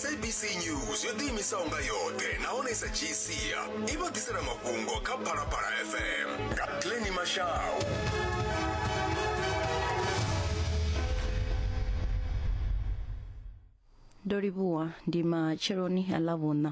sabc news yo ḓiimisaho nga yoṱhe nahone i sa dzhii sia i vha ḓisela mafhungo kha phalaphala fm nga pleni mashau ndo livhuwa ndi matsheloni a ḽa vhuṋa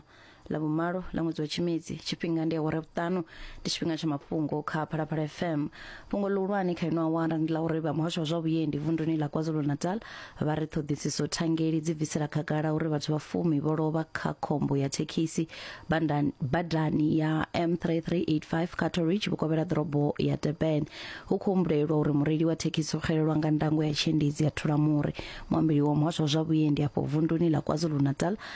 la vhumalo la ṅwedzi wa tshimedzi tshifhinga ndi awara vhuṱanu ndi tshifhinga tsha mafhungo kha phalaphala fm fhungo ḽihulwane kha ino awara ndi ḽa uri vha muhasho wa zwa vhuendi vunduni ḽa kwazulu-natal vha ri ṱhoḓisiso thangeli dzi bvisela khagala uri vhathu vha fumi vho lovha kha khombo ya thekhisi bandani- badani ya m3385 cattle ridge vhukovhela ḓorobo ya durban hu khou humbulelwa uri mureili wa thekhisi o xelelwa nga ndango ya tshiendedzi ya thulamuri muambeli wa muhasho wa zwa vhuendi afho vunduni ḽa kwazulu-natal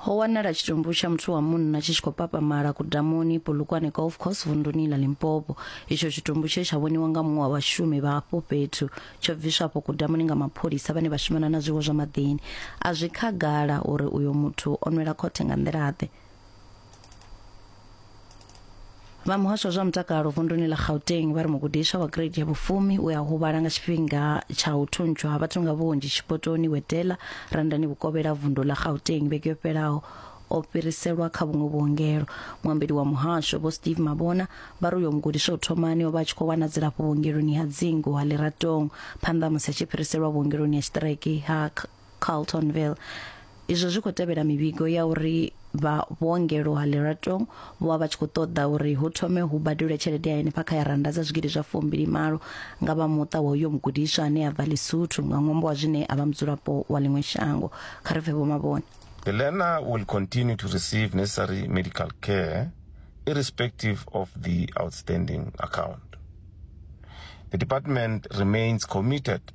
ho wanala tshitumbu tsha muthu wa munna tshi tshi khou papamala kudamuni polokwane golf course vunduni la limpopo itsho tshitumbu tshe tsha vhoniwa nga muṅwe wa vhashumi vha hafho fhethu tsho bviswa afho kudamuni nga mapholisa vhane vha shumana na zwiwo zwa maḓini a zwi khagala uri uyo muthu o nwela khothe nga nḓila-ḓe vha muhasho wa zwa mutakalo vunduni ḽa gauteng vha ri mugudiswa wa grade ya vhufumi u a huvhala nga tshifhinga tsha u thuntsha ha vhathu nga vhunzhi tshipotoni wetela randani vhukovhela vundu ḽa gauteng vhege yo fhelaho o fhiriselwa kha vhuṅwe vhuongelo muambeli wa muhasho vho steve mabona vha ri uyo mugudiswa u thomani o vha a tshi khou wana dzilafho vhuongeloni ha dzingu ha liratong phanḓa ha musi a tshi fhiriselwa vhuongeloni ha tshiṱireke ha Carltonville. Izwo zwi khou tevhela mivhigo ya uri vha vhuongelo ha Leratong vho vha vha tshi khou ṱoḓa uri hu thome hu badelwe tshelede ya henefha kha ya rannda dza zwigidi zwa fumbili malo nga vha muṱa wa uyo mugudiswa ane a bva Lesotho nga ṅwambo wa zwine a vha mudzulapo wa ḽiṅwe shango kha ri pfe vho mavhone The learner will continue to receive necessary medical care irrespective of the outstanding account. The department remains committed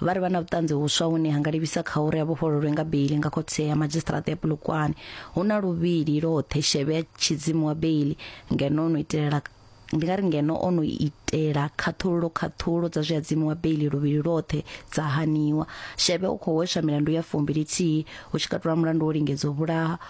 vha ri vha na vhuṱanzi vhuswa vhune ha nga livhisa kha uri a vhofhololwe nga beili nga khothe ya madzhisiṱiraṱa ya polokwane hu na luvhili lwoṱhe shevhe ya tshidzimu wa beili ngeno no itelela ndi nga ri ngeno o no itela khaṱhululo khaṱhululo dza zwi adzimu wa beili luvhili lwoṱhe dza haniwa shevhe u khou hweswa milandu ya fumbilithihi hu tshi katula mulandu wo lingedza u vhulaha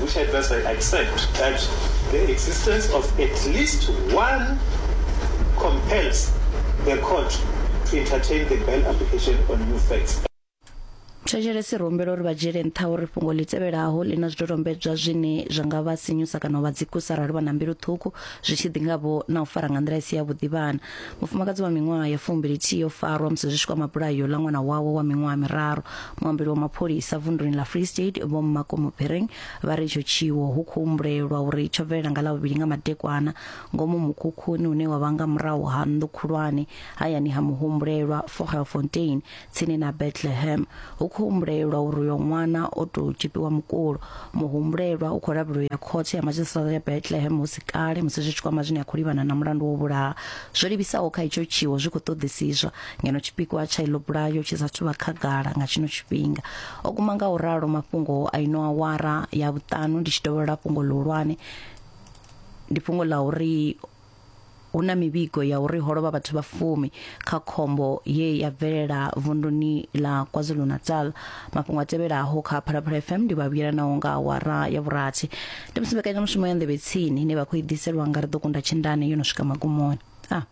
which I thus I accept that the existence of at least one compels the court to entertain the bail application on new facts. thetshelesi ri humbela uri vha dzhiele nṱha uri fhungo ḽi tevhelaho ḽi na zwidodombedzwa zwine zwa nga vha sinyusa kana u vha dzikusa arali vha na mbilu ṱhukhu zwi tshi ḓi nga vho na u fara nga nḓila i si yavhuḓi vhana mufumakadzi wa miṅwaha ya fumbilithihi o farwa musi zwi tshi kwama bulayo ḽa ṅwana wawe wa miṅwaha miraru muambeli wa mapholisa vunduni ḽa free state vho makomo bereng vha ri itsho tshiwo hu khou humbulelwa uri tsho bvelela nga ḽavhuvhili nga madekwana ngomu mukhukhuni une wa vha nga murahu ha nnḓu khulwane hayani ha muhumbulelwa fogelfontein tsini na bethlehem hu khou humbulelwa uri uyo ṅwana o tou tshipiwa mukulo muhumbulelwa u khou lavhelwa u ya khothe ya madzhisiṱiraṱa ya bethlehem hu si kale musi zwi tshi kwama zwine a khou livhana na mulandu wo vhulaha zwo livhisaho kha itsho tshiwo zwi khou ṱoḓisiswa ngeno tshipikwa tsha iḽo bulayo tshi sa thuvha khagala nga tshino tshifhinga o kuma nga u ralo mafhungo a ino awara ya vhuṱanu ndi tshi dovholola fhungo ḽihulwane ndi fhungo ḽa uri hu na mivhigo ya uri ho lovha vhathu vha fumi kha khombo ye ya bvelela vunduni ḽa KwaZulu-Natal mafhungo a tevhelaho kha Phalaphala FM ndi vha vhuyela naho nga awara ya vhurathi ndi musi mbekanyamushumo ya nḓevhe tsini ine vha khou i ḓiselwa nga ri ḓo kunda tshindane yo no swika magumoni a ah.